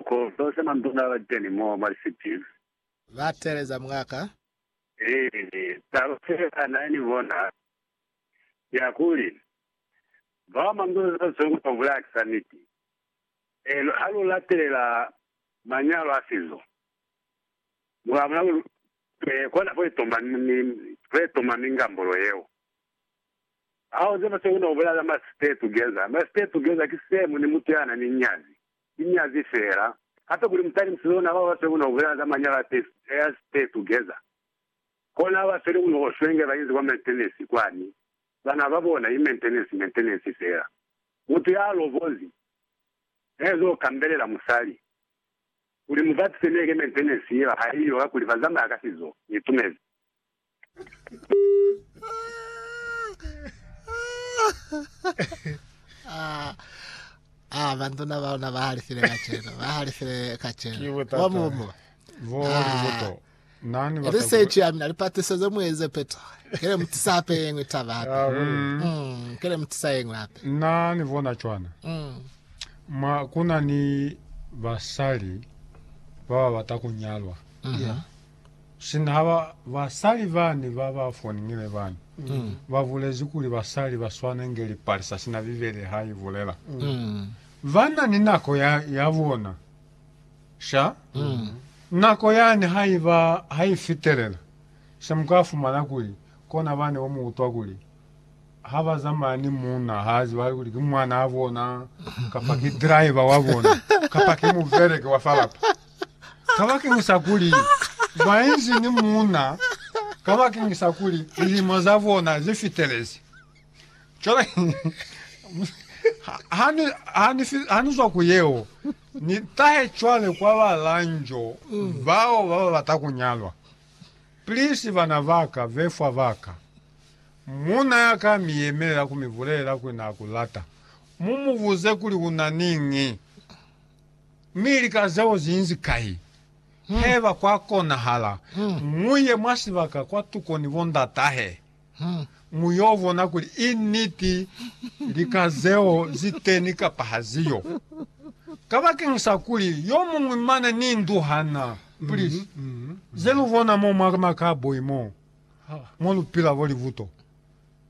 Ko zonse manduna ba keni mo mwa lisipi. Ba teeleza mwaka. Ee, taba se a na ni bona ya kuli, bao manduna za zongo ba bulaya ki za niti. Eli ha lu latelela manyalo a sizo, mwa bona kuli lutwe kona fo itoma ni fo itoma ni ngambolo yeo. Hao ze ba sekunda ku bulaya za ma stay together. Ma stay together ki same ni mutu ya na ni nyazi. Ki nyazi fela. Hape kuli mu times lona bao ba fe kuno bulela za manyalo a pay, heirs stay together. Kona haba feli kuno ko shwenge ba inzi kwa maintenance kwani. Bana ba bona ki maintenance maintenance fela. Mutu ya alobozi ne ezo kambelela musali kuli mu batise neke maintenance yeba haiyo kakuli ba zamaya ka sizo. Ni itumezi. Ah, ah, bantuna baona ba halifile kaceno, ba halifile Ki kaceno. botata. Wa mumu. Bo Ah. liboto. Nani bata Research ya mina lipatiso ze mueze peto. Kele mutisa hape yengwe taba hape. Ah, we. Mm, kele mutisa yengwe hape. Nani bona cwana. Mm. Mwa kuna ni basali ba ba bata kunyalwa. Mhm. Sina ba basali bani ba ba fonile bani, ba bulezi kuli basali ba swana inge lipalisa sina Bibele ha i bulela. Ba na ni nako ya, ya bona. Sha? Nako yani ha i ba, ha i fitelela, se mu ka fumana kuli, kona bani bo mu utwa kuli, ha ba zamaya ni muuna, ha a zibahali kuli ki mwanaa bona, kapa ki driver wa bona, kapa ki mubeleki wa fa lapa. kabakeñisa kuli bainzi ni muuna kabakeñisa kuli lilimo zabona zifitelezi. Cwale hanizwa ku yeo, nitahe cwale kwa balanjo bao bababata kunyalwa. Please, bana baka, befwa baka, muuna yaka miyemelela kumibulelela kuli naakulata, mumubuze kuli unani ñi. Mi lika zeo zinzi kai? Haiba kwa konahala, muye mwa sibaka kwa tuko ni bondatahe, mu yo bona kuli i niti lika zeo zi teni kapa ha zi yo. Kabakeñisa kuli yo muñwi mane ni ndu ha na puli ze lu bona mo mwa makaboi mo, mo lu pila bo libuto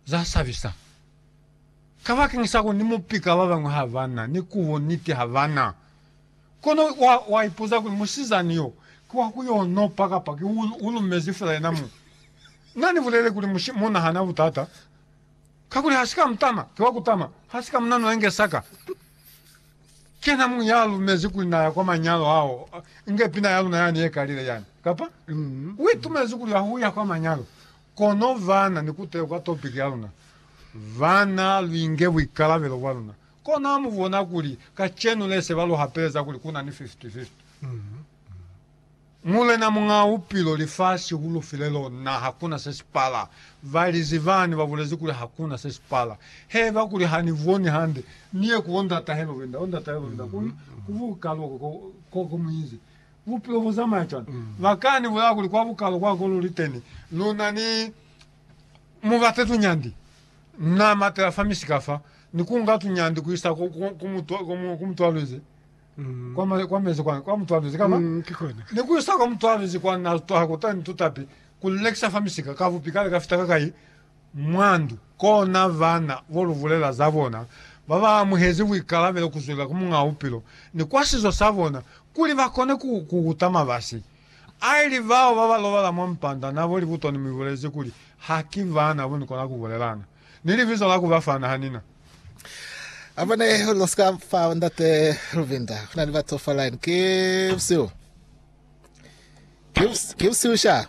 za sabisa. Kabakanyisa ku ni mupi ka babañwi ha ba na ni kubo niti ha ba na. Kono wa, wa ipuza kuli, Musizani yo, ki wa ku yo nopa kapa ki u, u lumezi fela yena muñwi? Na ni bulelele kuli, Mushe, muna ha na butata, kakuli ha si ka mutama, ki wa kutama, ha si ka mu nanula inge saka. Ki yena muñwi ya lumezi kuli na ya kwa manyalo ao, inge pina ya luna yani ye kalile yani. Kapa? U itumezi kuli ya ku ya kwa manyalo. Kono baana, ni kutehe kwa topiki ya luna, baana, luinge buikalabelo bwa luna. Kono ha mu bona kuli kacenu le se ba lu hapeleza kuli ku na ni fifty-fifty. Mulena Muñ'a Bupilo, lifasi u lu file lona, ha ku na se si pala. Ba lizi bani ba bulezi kuli ha ku na se si pala. He ba kuli, Ha ni boni hande, ni ye ku bo ndatahelo benda, bo ndatahelo benda, ku, ku buka loko ko, ko, ko mu inzi. Bupilo bu zamaya cwani? Ba ka ni bulaya kuli kwa bukalo kwa ko lu li teni, lu na ni mu bate tunyandi. Na matela fa misika fa, ni ku nga tunyandi ku isa ku, ku, ku, mutu, ku, mu, ku mutualuzi, kwa, ma, kwa mezi kwa, kwa mutualuzi kama, ni ku isa kwa mutualuzi kwa na twaha kutani tutapi, ku lu lekisa fa misika. Kabupi kale ka fita kakai mwa ndu, kona vana bo lu bulela za bona ba ba amuhezi buikalabelo ku zwela ku Muñaa Bupilo ni kwa sizo sa bona, kuli ba kone ku kukuta mabasi a ili bao ba ba lobala mwa mpanda na bo libuto ni mi bulezi kuli, Haki bana bo ni kona ku bulelana, ni libizo la ku ba fa na ha ni na. A bona ye lu si ka fa Ndate Luvinda. Ku na ni batu fa line. Ki busihu. Ki busihu sha.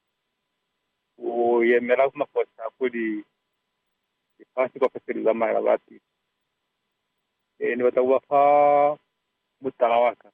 U yemela ku mafosisa kuli lifasi kaufela li zamaela ba pili. Ee, ni bata ku ba fa mutala wa ka.